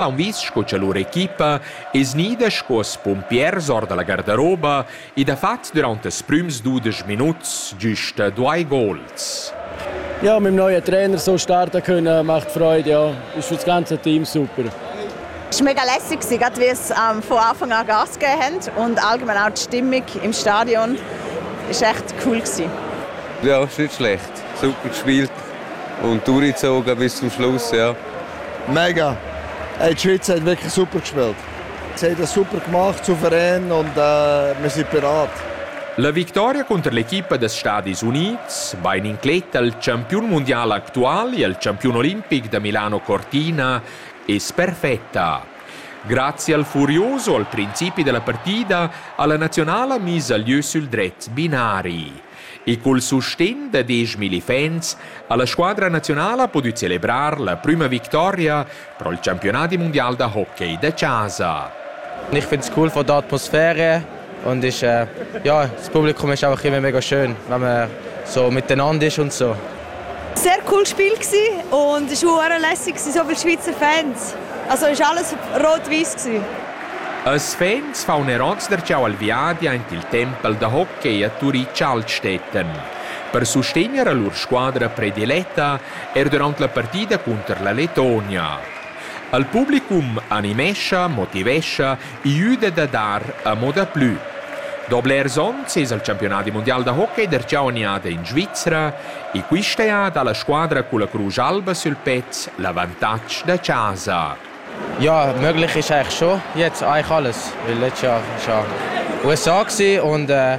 Haun vis sco cha lur equipa es gnida sco spumpiers or da la gardaroba ed ha fat dürant ils prüms dudesch minuts güsta duai gols. Ja, mit dem neuen Trainer so starten können, macht Freude, ja. Ist für das ganze Team super. Es war mega lässig, gerade wie es ähm, von Anfang an Gas gegeben haben und allgemein auch die Stimmung im Stadion war echt cool. Gewesen. Ja, ist nicht schlecht. Super gespielt. Und du Rizzo, bist zum Schluss, ja? Mega! Hey, die Schweiz hat wirklich super gespielt. Sie haben das super gemacht, souverän und äh, wir sind bereit. La victoria contro l'equipa des Stadis Units va in incletta al campion mondiale attuale e al campion olimpic da Milano Cortina è perfetta. Grazie al furioso al principi della partita, alla nazionale ha mise gli œufs sul dret binari. e col sustegn da dieschmilli fans ha la squadra nazionala pudü celebrar la prüma victoria pro il campionadi mundial da hockey da chasa. Ich finde es cool von der Atmosphäre und ich, äh, ja, das Publikum ist auch immer mega schön, wenn man so miteinander ist und so. sehr cool Spiel und es auch lässig, sind so viele Schweizer Fans. Also ist alles rot-weiß Als Fans faun er ons darcheu al viadi aint il tempel da hockey a Turitg Altstätten. Per sustegner a lur squadra prediletta er durant la partida cunter la Letonia. Al publicum animescha, motivescha Iü da da dar amo daplü. Da blers ons es il campiunadi mundial da hockey darcheu aniada in Svizra e quista eada la squadra culla crusch alba sül pez l'avantatg da chasa. Ja, möglich ist eigentlich schon jetzt eigentlich alles, weil letztes Jahr ist ja USA gsi und äh,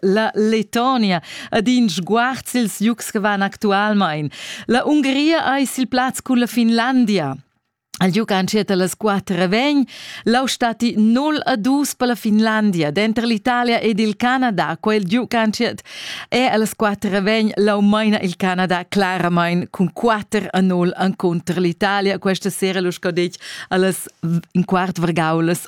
la Letonia ad in sguard sils jugs che van actualmein. La Ungria eis il plaz culla Finlandia. Al giug entschiet las quatter vegn lau stati 0 a 2 per la Finlandia, denter l'Italia ed il Canada. Quel giug entschiet e las quatter vegn lau meina il Canada claramain cun 4 a 0 encontro l'Italia. Questa sera lu scadetg allas in quart vargaulas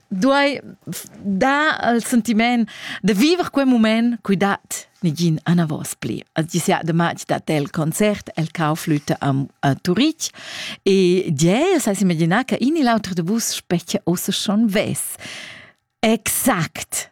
duai dar al sentiment da viver quel moment cui dat nigin anavos pli. Als disià de matg dat el concert, el cau flüte a, a Turitg e die, sai imaginar che in e l'auter de bus specchia ossa schon ves. Exakt.